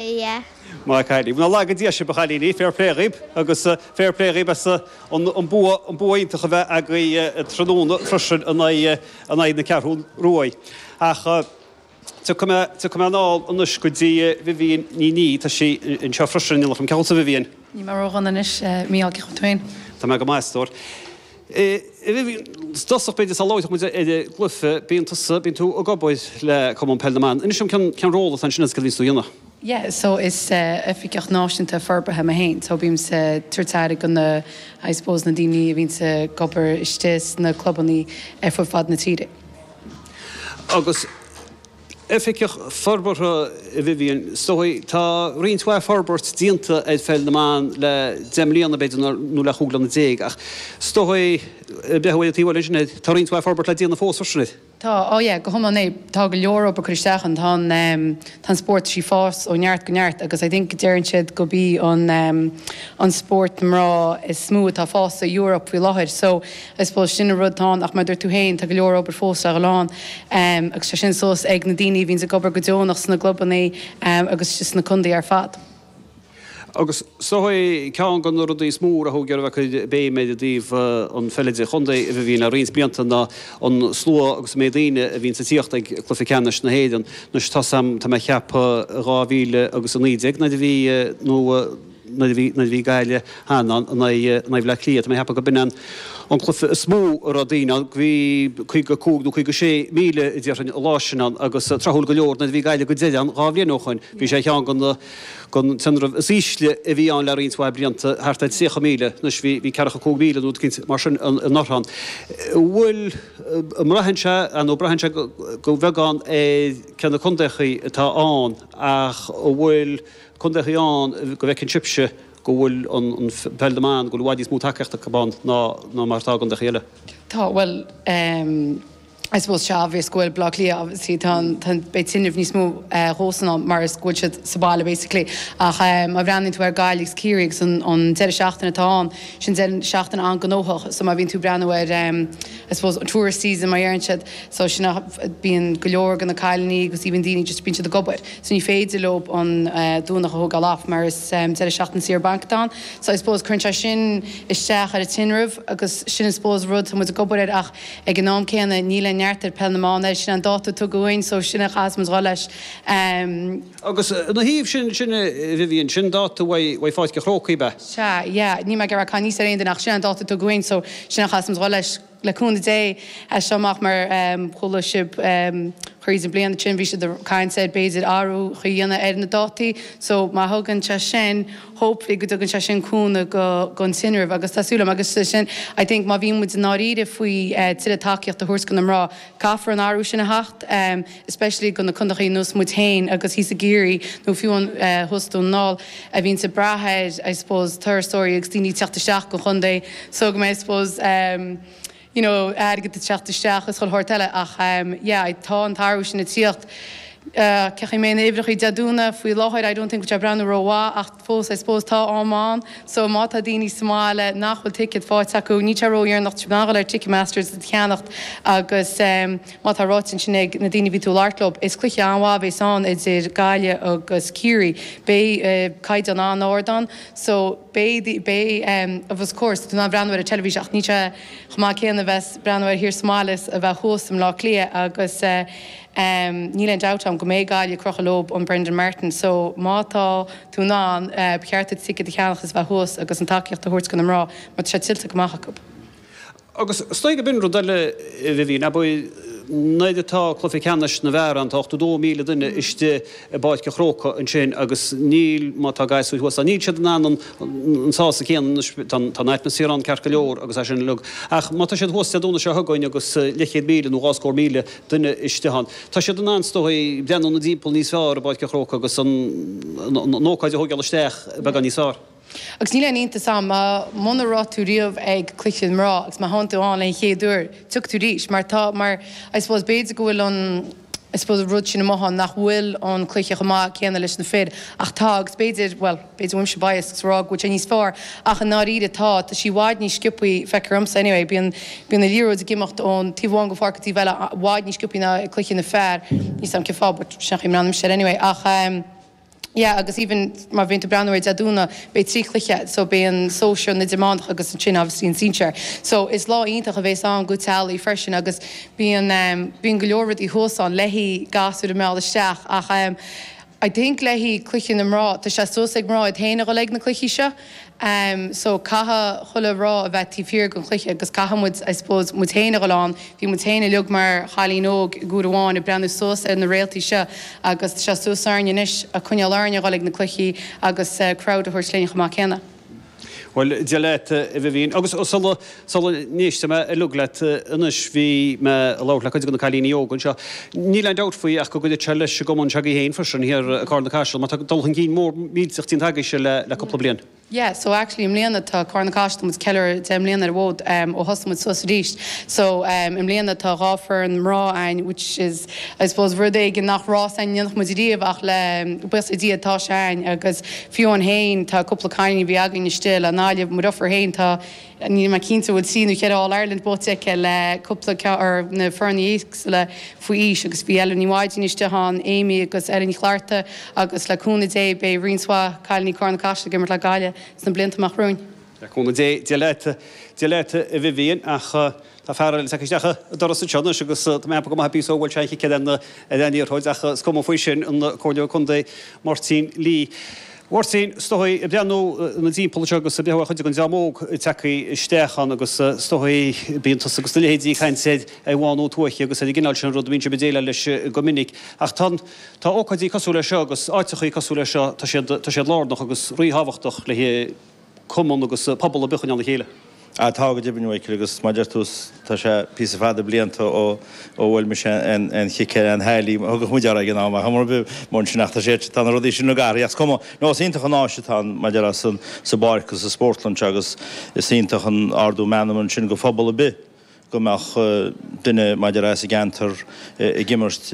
yeah. Maith a Cailín. Nár laga Dia sibh a chailíní, fair play dhaoib agus fair play dhaoib as an bua iontach a bheith agaibh tráthnóna freisin in aghaidh na Ceathrún Ruaidh. Ach tiocfaidh mé anall anois go dtí Vivienne Ní Niaidh, tá sí anseo freisin, an dtiocfaidh? Cén chaoi a bhfuil tú Vivienne? Níl mé ró-dhona anois, Mícheál, cén chaoi a bhfuil tú féin? Tá mé go maith, a stór. I dtosach b'fhéidir sula labhróidh muid ar an gcluiche, bíonn tusa, bíonn tú ag obair le Cumann Peil na mBan. Inis dom cén, cén ról atá ansin agus cad a bhíonns tú a dhéanamh? Yeah, so is Oifigeach Náisiúnta Forbartha mé féin, so bímse ag tabhairt aire go na, I suppose, na daoine a bhíonns ag obair istigh sna clubannaí ar fud fad na tíre. Agus. Oifigeach Forbartha í Vivienne, is dóigh, tá roinnt mhaith forbairt déanta ar Pheil na mBan le deich mbliana, b'fhéidir, nó le chúig bliana déag, ach is dóigh, ag breathnú uaidh taobh amuigh de sin, tá roinnt mhaith forbairt le déanamh fós, os a chionn sin. Tá, á yeah, go hiomlán, aye, tá go leor obair curtha isteach ann, tá an, tá an spórt théis fás ó neart go neart agus I think deireann siad gurb í an, an spórt na mná is mó atá fásta i Europe faoi láthair, so I suppose sin an rud atá ann ach mar a dúirt tú féin tá go leor obair fós le dhul ann agus tá sin suas ag na daoine a bhíonns ag obair go deonach sna gclubannaí agus sna contaetha ar fad. Agus seo é ceann de na rudaí is mó a thug daoibh a gcuid béime i dtaobh an pheil idir chontae a bhí ann le roinnt blianta ná an slua agus an méid daoine a bhíonns ag tíocht ag cluiche ceannais na hÉireann. Anois tá a fhios agam tá mé ag ceapadh dhá mhíle agus a naoi déag nuair a bhí nó nuair a bhí, nuair a bhí Gaillimh cheana ann in aghaidh Bhleá Cliath. Tá mé ag ceapadh gurb in an, an cluiche is mó a raibh daoine ann, bhí 55 nó 56 míle déarfainn an lá sin ann agus tráthúil go leor nuair a bhí Gaillimh go deireanach ann dhá bhliain ó shoin, bhí sé ar cheann den, den tinreamh is ísle a bhí ann le roinnt mhaith blianta, thart ar 30 míle. Anois bhí, bhí ceathracha a cúig mhíle nó rud eicínt mar sin in, anuraidh ann. Bhfuil, an mbraitheann sé, ar ndóigh braitheann sé go, go bheagán ar cé na condaethaí atá ann ach an bhfuil, contaeacha ann, go bhfeiceann sibhse go bhfuil an Peil na mBan, go bhfuil i bhfad níos mó tacaíocht acu ann ná mar atá i gcontaeacha eile? Tá, bhuel ehm I suppose tá sé obvious go bhfuil Bleá Cliath obviously tá an, tá an, beidh tinreamh níos mó dhóibhsan ann mar is go bhfuil siad sa bhaile basically ach ehm má bhreathnaíonn tú ar Gaillimh agus Ciarraí agus an, an deireadh seachtaine atá ann, sin deireadh seachtaine an-gnóthach so má bhíonn tú breathnú ar ehm I suppose tourist season mar a deireann siad so sin é bíonn go leor de na cailíní agus even daoine just bíonn siad ag obair. So ní féidir leo an Domhnach a thógáil off mar is deireadh seachtaine saor bainc atá ann. So I suppose cuireann sé sin isteach ar an tinreamh agus sin I suppose rud atá muid ag obair air ach ag an am céanna níl aon neart ag Peil na mBan air, sin é an dáta a tugadh dhúinn so sin é a chaithfeas muid dhul leis. Agus ina thaobh sin, sin é Vivienne, sin dáta uaidh Pháirc an Chrócaigh ab ea? Sea, yeah. Níl mé ag iarraidh caitheamh anuas ar aon duine ach sin é an dáta a tugadh dhúinn so sin é a chaithfeas muid dhul leis. le cúnamh Dé, as seo amach, mar a chuala sibh thríd an mbliain sin, bhí siad ag caint ar, b'fhéidir, athrú a dhéanamh ar na dátaí. So, má thugann sé sin, hopefully, go dtugann sé sin cúnamh go, gon tinreamh, agus tá súil agam é sin, I think, má bhíonn muid i ndáiríre faoi tuilleadh tacaíocht a thabhairt go na mná, caithfear an t-athrú sin a theacht. especially go na contaethaí ar nós muid féin agus thíos i gCiarraí, nó fiú amháin thuas i nDún na nGall, a bhíonns ag brath ar, I suppose, turasóirí agus daoine ag teacht isteach gon chontae, so go mbeidh, I suppose, you know, airgead ag teacht isteach is chuile shórt eile, ach yeah, I, tá an t-athrú sin ag tíocht. Seachas, em, na huimhreachaí Dé Domhnaigh faoi láthair, I don't think go bhfuil siad ag breathnú ró-mhaith, ach. fós, I suppose, tá am ann. So, má tá daoine sa mbaile nach bhfuil ticket fáighte acu, níl sé ró-dhéanach a dhul ar Ticketmaster is iad a cheannacht agus mar atá ráite ansin ag na daoine a bhí tú ag labhairt leo, is cluiche an-mhaith a bhéas ann idir Gaillimh agus Ciarraí. Béidh caighdeán an-ard ann so béidh, béidh of of course, tú in ann breathnú ar an teilifís ach níl sé chomh maith céanna a bheith ag breathnú air thiar sa mbaile is a bheith thuas i mBleá Cliath agus eh, Em, níl aon dabht ann go mbeidh Gaillimh ag crochadh leob an Brendan Martin, so má tá tú in ann, eh, ba cheart duit ticead a cheannach is bheith thuas agus an tacaíocht a thabhairt go na mná mar tá sé tuillte go maith acu. Agus is dóigh gob in rud eile, a Vivian, ab é nuair atá cluiche ceannais na bhfear ann, tá 82,000 duine istigh i bPáirc a' Chrócaigh ansin agus níl, má tá gasúir thuas ann, níl siad in ann an, an sásamh céanna, anois, tá an, tá an atmaisféar ann ceart go leor agus é sin uilig ach má tá siad thuas Dé Domhnaigh seo chugainn agus eh, leithchéad míle nó dhá scór míle, duine istigh ann. Tá siad in ann, is dóigh, breathnú timpeall níos fearr i bPáirc an Chrócaigh agus an ócáid a thóigeáil isteach beagán níos fearr. Agus níl aon iontas ann, mar muna raibh tú riamh ag cluiche de chuid na mná agus má theann tú ann don chéad uair, tiocfaidh tú arís. Mar tá, mar I suppose, b'fhéidir go bhfuil an, I suppose, rud sin amuigh ann nach bhfuil an cluiche chomh maith céanna leis na fir, ach tá, agus b'fhéidir, bhuel, b'fhéidir go bhfuil mise biased ag rá go bhfuil sé níos fearr ach i ndáiríre tá, tá sí i bhfad níos sciopthaí, feicthear dhomsa anyway, bíonn, bíonn an liathróid ag imeacht ón taobh amháin den pháirc go dtí an taobh eile i bhfad níos sciopthaí ná i gcluiche na bhfear, níl a fhios a'm cén fáth but sin é an chaoi a mbreathnaímse air anyway ach ehm yeah agus even má bhíonn tú ag breathnú ar Dé Domhnaigh beidh trí cluiche so beidh an sóisear ann, idirmheánach agus ansin obviously an sinsear so is lá iontach a bhéas ann go teaghlaigh freisin agus bíonn ehm bíonn go leor rudaí thuas ann le haghaidh gasúir a mhealladh isteach ach ehm I think le haghaidh cluichí na mná. Tá sé suas ag mná iad féin a dhul ag na cluichí seo. Em, so, caithfidh chuile mhná a bheith taobh thiar den chluiche agus caithfidh muid, I suppose, muid féin a dhul ann. Bhí muid féin uilig mar chailíní óga ag uair amháin ag breathnú suas ar na réaltaí seo agus tá sé suas orainn anois a' coinneáil orainn a dhul ag na cluichí agus eh crowd a thabhairt linn chomh maith céanna. Bhuel, Dia leat, a Vivienne. Agus sula, sula n-éistfidh muid uilig leat anois, bhí mé ag labhairt le cuid de na cailíní óga anseo. Níl aon dabht faoi ach go gcuideoidh sé leis an gcumann se'agaibh féin freisin, thiar i Carna Caiseal, mar tá dul chun cinn mór millteach déanta agaibhse le, le cúpla bliain. Yeah, so actually i mbliana tá Carna Caiseal, tá muid ag ceiliúradh deich mbliana ar an bhfód ó thosaigh muid suas arís. So, i mbliana tá dhá foireann mná a'inn which is, I suppose rud éigin nach raibh a fhios a'inn a dhéanfadh muid ariamh ach le, buíochas le Dia, tá sé a'inn agus Fiú amháin féin, tá cúpla cailín a bhí againn istigh le Naile, mo dheirfiúr féin, tá, níl mé cinnte an bhfuil trí nó cheithre All Ireland buaite aici le cúpla ceann ar na foirne éagsúla faoi aois agus bhí Eibhlín Ní Mhadaoin istigh ann, Amy agus Eibhlín Ní Chlochartaigh agus le cúnamh Dé beidh roinnt mhaith cailíní Carna Caiseal ag imirt le Gaillimh sna blianta amach romhainn. Le cúnamh Dé, Dia leat, Dia leat a Vivienne ach. Tá fear eile tagtha isteach an doras anseo anois agus tá mé ag ceapadh go bhfuil píosa ó bhuail sé aon chic eile ar an liathróid ach is cuma faoi sin, an Comhairleoir Contae Máirtín Lee. Mháirtín, is dóigh, ag breathnú inár dtimpeall anseo agus ag breathnú ar chuid den dream óg atá tagtha isteach ann agus is dóigh bíonn tusa agus do leithéidí ag caint ar fhadhb bhánú tuaithe agus ar an gcineál sin rud a bhíonn sibh ag déileáil leis go minic ach tá an, tá ócáidí cosúil leis seo agus áiteachaí cosúil leis seo, tá siad, tá siad lárnach agus rí-thábhachtach le. cumann agus pobal ar bith a choinneáil le chéile. Tá, go deimhin, a Mhichael, agus mar a deir tú, tá sé píosa fada blianta ó bhuail mise aon chic ar aon liathróid, thugadh muid air ag an am, ach mura mbeadh ansin ach tá sé, tá na rudaí sin ag athrú, ach is cuma. No, is iontach an áis atá ann, mar a deir tú, sa bpáirc, sa spórtlann seo, agus is iontach an t-ardú meanman sin go phobal ar bith. go mbeadh duine mar a déarfá as a gceantar ag imirt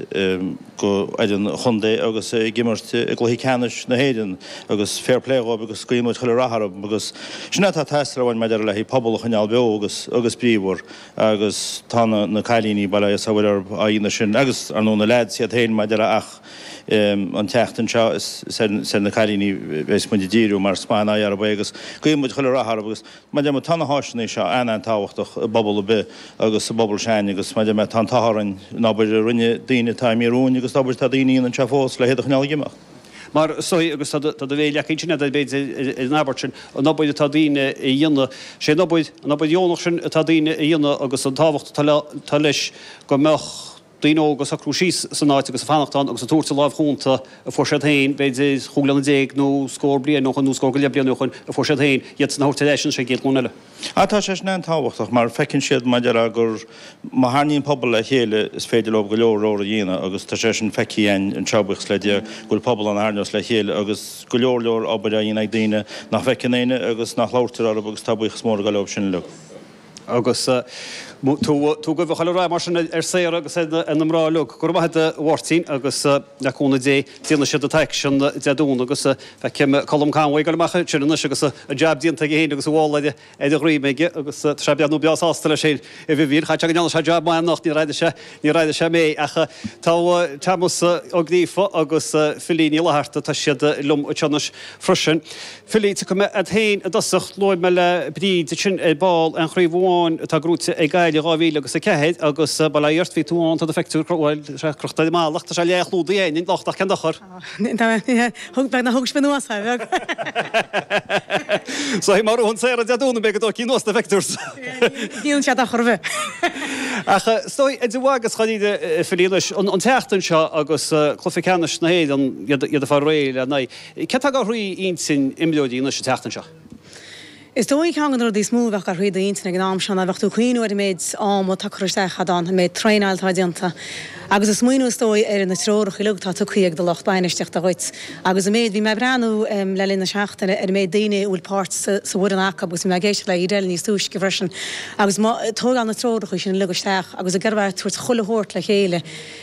go fhoireann chontae agus ag imirt i gcluichí ceannais na hÉireann agus fair play dhóibh agus guíonn muid chuile rath orthu agus sin atá ag teastáil uainn mar a déarfá le haghaidh pobal a choinneáil beo agus agus bríomhar agus tá na cailíní bail ó Dhia orthub á dhéanamh sin agus ar ndóigh na leaids iad féin mar a déarfá ach an tseachtain seo is ar na cailíní bheidh muid ag díriú mar is maith an aghaidh orthub é agus guíonn muid chuile rath orthu agus. Mar a deir mé tá na háiseanna seo an-an-tábhachtach i bpobal ar bith agus i bpobal s'againne agus mar a deir mé tá an t-ádh orainn an obair a rinne daoine atá imithe romhainn agus an obair atá daoine a dhéanamh anseo fós le hiad a choinneáil ag imeacht. Mar sin é agus tá do tá do mhéar leagtha ansin agat ar an abairt sin an obair atá daoine a dhéanamh is í an obair an obair dheonach sin atá daoine a dhéanamh agus an tábhacht atá le tá leis go mbeadh daoine óga ag socrú síos san áit agus ag fanacht ann agus ag tabhairt an lámh chúnta a fuair siad féin, b'fhéidir chúig bliana déag nó scór bliain ó shoin nó scór go leith bliain ó shoin a fuair siad féin, iad sin a thabhairt ar ais ag an gcéad ghlúin eile. Ach tá sé sin an-tábhachtach mar feiceann siad mar a déarfá gur má tharraingíonn pobal le chéile is féidir leo go leor leor a dhéanamh agus tá sé sin feicthe againn anseo buíochas le Dia go bhfuil pobal ann a tharraingeos le chéile agus go leor leor obair á dhéanamh ag daoine nach bhfeiceann éinne agus nach labhairtear orthu agus tá buíochas mór ag dul dóibh sin uilig. Agus tú ag guí chuile rath mar sin ar Sarah agus ar na mná uilig. Go raibh maith agat a Mháirtín agus le cúnamh Dé déanfaidh siad an t-aicsean Dé Domhnaigh agus feicim Colm Conway ag goil amach ansin anois agus an jab déanta aige féin agus a mhála ar a dhroim aige agus tá sé ag breathnú breá sásta leis féin. A Vivian, caithfidh sé go ndearna sé jab maith anocht, níor airigh sé. Níor airigh sé mé, ach tá Tomás Ó Gríofa agus Philly Ní Fhlatharta, tá siad liom anseo anois freisin. Philly, tiocfaidh mé ort féin i dtosach, luaigh mé le Bríd ansin ar ball an chraobh amháin atá gnóite ag Gaillimh i 2000 agus 4, agus bail ó Dhia ort, bhí tú ann, tá do phictiúr crochta ar an mballa, tá sé leathchlúdaithe fhéin anois, ach cén dochar. Thug beag nach thug sin anuas a bheag. Sea, má ghnóthaíonn Sarah Dé Domhnaigh beidh ag tógáil anuas na pictiúir. Níl siad ach roimhe. Ach is dóigh, idir mhagadh is dáiríre a Philly anois, an tseachtain seo agus cluiche ceannais na hÉireann, iad ag fáil réidh lena aghaidh, céard atá ag goil thrí intinn imreoirí anois an tseachtain seo? Is dóigh ceann de na rudaí is mó a bheadh ag goil thrí d'intinn ag an am seo ná bheadh tú ag cuimhniú ar an méid ama atá curtha isteach agat féin, an méid traenáil atá déanta agus ag smaoineamh is dóigh ar na treoracha uilig atá tugtha ag do lucht bainistiochta dhuit agus an méid, bhí mé ag breathnú le linn na seachtaine ar an méid daoine a bhfuil páirt sa bhfoireann acu agus bhí mé ag éisteacht le Edel níos túisce freisin agus ag tógáil na treoracha sin uilig isteach agus ag tabhairt chuile shórt le chéile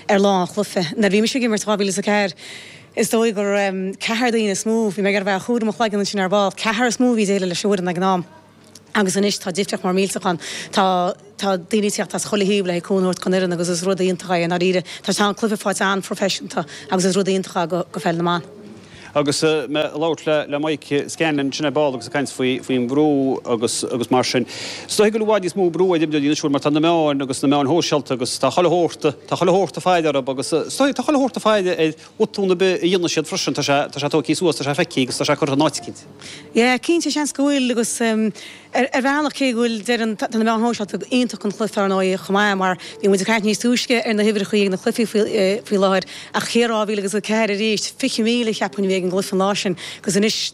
ar lá an chluiche. Nuair bhí mise ag imirt 2004, Is dóigh gur ceathrar daoine is mó, bhí mé ag iarraidh bheith á gcomhaireamh i mo chloigeann ansin ar ball, ceathrar is mó a bhí ag déileáil leis an bhfoireann ag an am. Agus anois tá difriocht mór millteach ann. Tá tá daoine ag teacht as chuile thaobh le cúnamh a thabhairt don fhoireann agus is rud iontach é i ndáiríre. Tá an cluiche faighte an-phroifeiseanta agus is rud iontach é do pheil na mban. Agus mé ag labhairt le Mike Scanlon ansin ar ball agus ag caint faoi faoin bhrú agus agus mar sin, Is dóigh go bhfuil i bhfad níos mó brú ar imreoirí anois mar tá na meáin agus na meáin shóisialta agus tá chuile shórt, tá chuile shórt ag faire orthu agus is dóigh, tá chuile shórt ag faire ar bhotún ar bith a dhéanann siad freisin, tá sé, tá sé tógtha suas, tá sé feicthe agus tá sé curtha in áit éicint. Yeah, cinnte, seans go bhfuil agus ar, ar bhealach cé go bhfuil, deireann, tá na meáin shóisialta iontach don chluife ar ndóigh chomh maith mar bhí muid ag caint níos túisce ar na huimhreachaí ag na cluichí faoi, faoi láthair ach cé 2004 arís, 20,000 cheapfainn a bhí ag an gcluif an lá sin agus anois,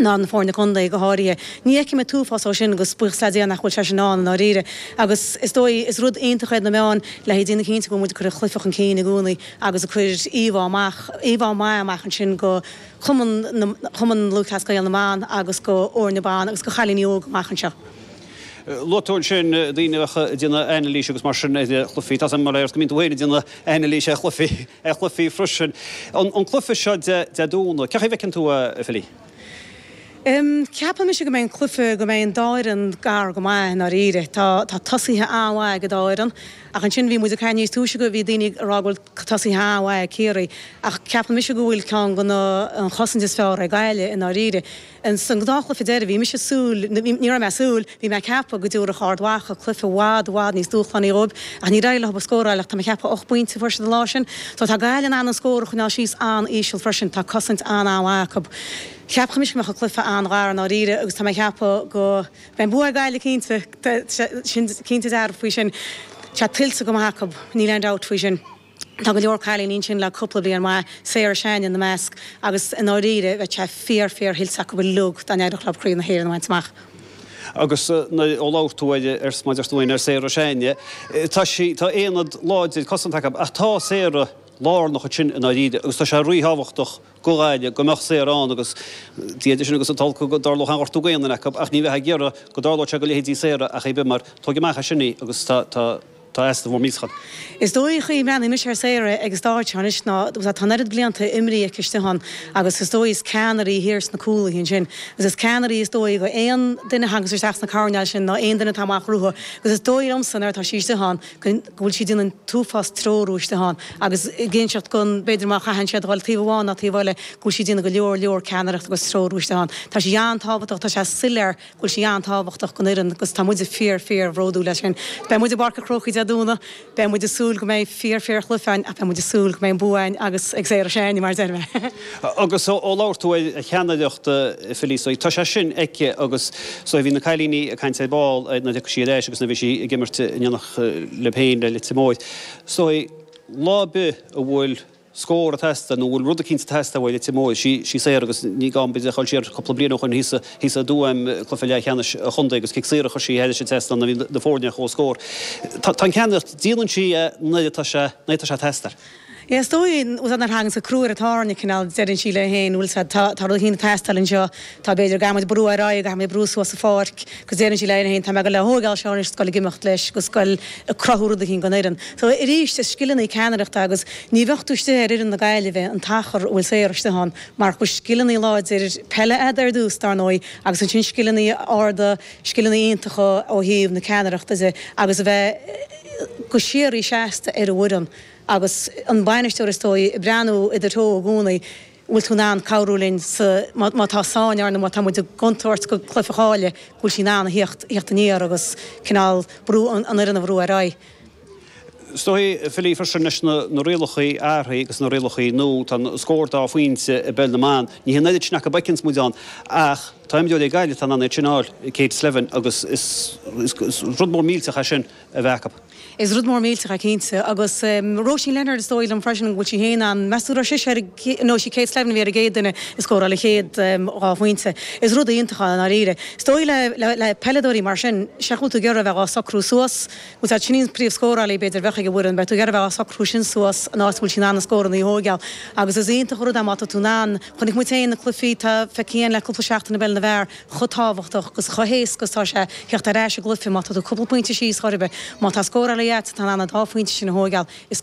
ná na foirne contae go háirithe. Ní fheicim an t-uafás dhó sin agus buíochas le Dia nach bhfuil sé sin ann i ndáiríre. Agus is dóigh, is rud iontach iad na meáin le haghaidh déanamh cinnte go bhfuil muid ag cur an chluife chun cinn i gcónaí agus ag cur íomhá amach, íomhá maith amach ansin do Cumann na, Cumann Lúthchleas Gael na mBan agus do fhoirne ban agus do chailíní óga amach anseo. Luaigh tú ansin daoine a bheadh ag déanamh anailíse agus mar sin ar chluichí. Tá a fhios agam mar a fheart go mbíonn tú féin ag déanamh anailíse ar chluichí. ar chluichí freisin. An cluiche seo Dé Domhnaigh, cén chaoi a bhfeiceann tú é, Philly? Ceapaim mise go mbeidh an cluiche, go mbeidh an dá fhoireann gar go maith i ndáiríre. Tá tosaithe an-mhaith ag an dá fhoireann, ach ansin bhí muid ag caint níos túisce, agus bhí daoine ag rá go bhfuil tosaithe an-mhaith ag Ciarraí, ach ceapaim mise go bhfuil ceann de na, an chosaint is fearr ag Gaillimh i ndáiríre. Ins an gnáthchluiche deiridh, bhí mise ag súil, nó ní raibh mé ag súil, bhí mé ag ceapadh go dtabharfadh Ard Mhacha cluiche i bhfad, i bhfad níos dúshlánaí dhóibh, ach ní raibh leo ach scóráil, ach tá mé ag ceapadh ocht bpointe a fuair siad an lá sin. So tá Gaillimh in ann an scór a choinneáil síos an-íseal freisin, tá cosaint an-an-mhaith acu. Cheapfainnse go mbeadh an cluiche an-ghar i ndáiríre, agus tá mé ag ceapadh go mbeidh bua ag Gaillimh cinnte, tá siad cinnte dearfa faoi sin, tá sé tuillte go maith acu, níl aon dabht faoi sin. Tá go leor cailíní ansin le cúpla bliain mhaith, Sarah Sheáin ina measc, agus i ndáiríre bheadh sé fíor fíor thuillte acu uilig dá n-éireodh leo Craobh na hÉireann a bhaint amach. Agus ó labhair tú ar mar a déarfá, ar Sarah Sheáin, tá sí, tá aonad láidir cosanta acu, ach tá Sarah lárnach ansin i ndáiríre agus tá sé rí-thábhachtach do Ghaillimh go mbeadh Sarah ann agus Dia idir sinn agus an t-olc go dtarlódh aon ghortú d'aon duine acu ach ní bheadh ag iarraidh go dtarlódh sé go leithéidí Sarah ar chaoi ar bith mar tóg amach as sin í agus tá Tá easnamh mór millteach ann. Is dóigh chaoi a mbreathnaíonn mise ar Sarah ag an staid seo anois ná tá an oiread blianta imeartha aici istigh ann agus is dóigh is ceannaire í thiar sna cúlaithe ansin agus is ceannaire í is dóigh go aon duine thagas isteach sna coirnéil sin nó aon duine atá amach uaithi agus is dóigh liomsa nuair atá sí istigh ann go bhfuil sí ag déanamh an t-uafás treorú istigh ann agus ag inseacht go b'fhéidir má chaitheann siad a dhul taobh amháin nó taobh eile go bhfuil sí ag déanamh go leor leor ceannaireacht agus treorú istigh ann tá sí an-tábhachtach tá sé soiléir bhfuil sí an-tábhachtach don fhoireann agus tá muid fíor, fíor bhródúil as sin. Beidh muid i bPáirc an Chrócaigh Dé Domhnaigh, beidh muid ag súil go mbeidh fíor, fíor chluiche ann ach beidh muid ag súil go mbeidh an bua againn agus ag Sarah Sheáin, mar a deir mé! Agus ó labhair tú ar cheannaireacht Philly, so tá sé sin aici agus so bhí na cailíní ag caint ar ball nuair a thiocfaidh sí ar ais agus nuair a bhí sí ag imirt in éineacht libh féin le Leitir Móir, so lá ar bith a bhfuil. scór ag teastáil, nó a bhfuil rud eicínt ag teastáil uait, imeoidh sí, sí Sarah agus ní gá muid a dhul siar. Cúpla bliain ó shoin thíos thíos i dTuaim, cluiche leathcheannais an chontae, agus cic saor a chuir sí thar an trasnán nuair a bhí na foirne ar chomhscór. Tá an cheannaireacht, déanann sí é nuair atá sé, nuair atá sé ag teastáil. Is dóigh, an bhfuil a fhios agat nuair a thagann an crú ar an tairne cineál, deireann sí léi féin, bhfuil a fhios agat, tá, tá rud eicínt ag teastáil anseo. Tá b'fhéidir go gcaithfimid brú ar aghaidh, go gcaithfimid brú suas sa pháirc, agus déarfaidh sí léi féin, tá mé ag dul ag tógáil seo anois, is ag goil ag imeacht leis, agus ag goil ag cruthú rud éigin don fhoireann. So, arís, is scileanna í ceannaireachta, agus ní bheadh tú istigh ar fhoireann na Gaillimhe an t-achar a bhfuil Sarah istigh ann, marach scileanna láidir peile agat ar dtús, dar ndóigh, agus ansin scileanna arda, scileanna iontacha ó thaobh na ceannaireachta de, agus a bheith go síoraí seasta ar an bhfoireann, agus an bainisteoir, is dóigh, ag breathnú i do threo i gcónaí. An bhfuil tú in ann cabhrú linn sa, má, má tá sáinn orainn nó má tá muid i gcontúirt an cluiche a chailleadh, go bhfuil sí in ann a theacht, a theacht aniar agus cineál brú an, an fhoireann a bhrú ar aghaidh. Is dóigh, Philly, freisin leis na, na rialacha athraithe agus na rialacha nua, tá an scór dá phointe i bpeil na mban, ní hé an oiread sin acu a bhfeiceanns muid ann ach tá imreoirí ag Gaillimh atá in ann iad sin a fháil, Kate Slevin agus is, is, is rud mór millteach é sin. a bheith acu. Is rud mór millteach é cinnte. Agus Róisín Leonard, is dóigh liom freisin go bhfuil sí féin ann, meas tú go raibh sise ar an gcéad, no, sí Kate Slavin a bhí ar an gcéad duine a scóráil a chéad dhá phointe. Is rud iontach é i ndáiríre. Is dóigh le, le, le peileadóirí mar sin, sea, bheadh tú ag iarraidh a bheith dhá socrú suas, más ea, sin í an príomhscórálaí b'fhéidir a bheadh ag an bhfoireann, bheadh tú ag iarraidh a bheith dhá socrú sin suas in áit a bhfuil sí in ann na scóranna a thóigeáil. Agus is iontach an rud é má tá tú in ann, chonaic muid féin na cluichí, tá, feicthe againn féin le cúpla seachtain i bpeil na bhfear, chomh tábhachtach agus chomh héasca is atá sé theacht ar ais i gcluiche má tá tú cúpla pointe síos chor ar bith. Má tá scórálaí agat atá in ann an dá phointe sin a thógáil is.